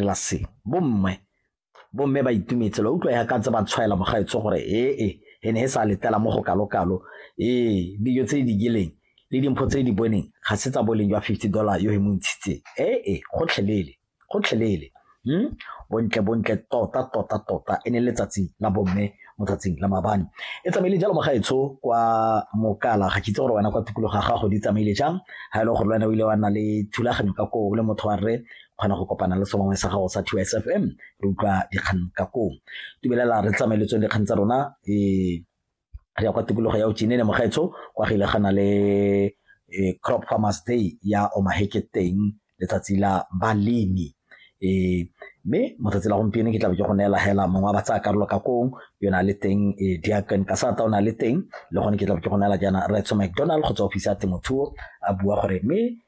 la se bomme bomme ba itumetse lo utlwa ya ka tse ba tshwaela mogaetsho gore ee e, e ne e sa letela mo go kalokalo ee dijo tse di digileng le dimpho tse di boneng ga se tsa boleng jwa fifty dollar yo e mo ntshitseng ee e, gotlhelele gotlhelele hmm? bontle bontle tota tota tota e ne letsatsi la bomme mo tsatsing la mabane e tsamaile jalo mogaetsho kwa mokala ga kitse gore wena kwa tukologo ga gago di tsamaile jang ga e le gore le wena o ile wa nna le thulaganyo ka koo le motho wa rre kgona go kopana le sengwe sa gago sa two sfm re utlwa dikgang ka koo tumelela re tsamaeletsong dikgang tsa rona um re ya kwa tikologo ya ojenene mogaetsho kwa gile gana le um crop farmers day ya omaheke teng letsatsi la balemi um mme motsatsi la gompieno ke tlabe ke go neela hela mongwe wa ba tsaya karolo ka kong yo na le teng um eh, diaken kasata o na le teng le gone ke tlabe ke go neela jaana retso mcdonald go tswa office ya temothuo a bua gore mme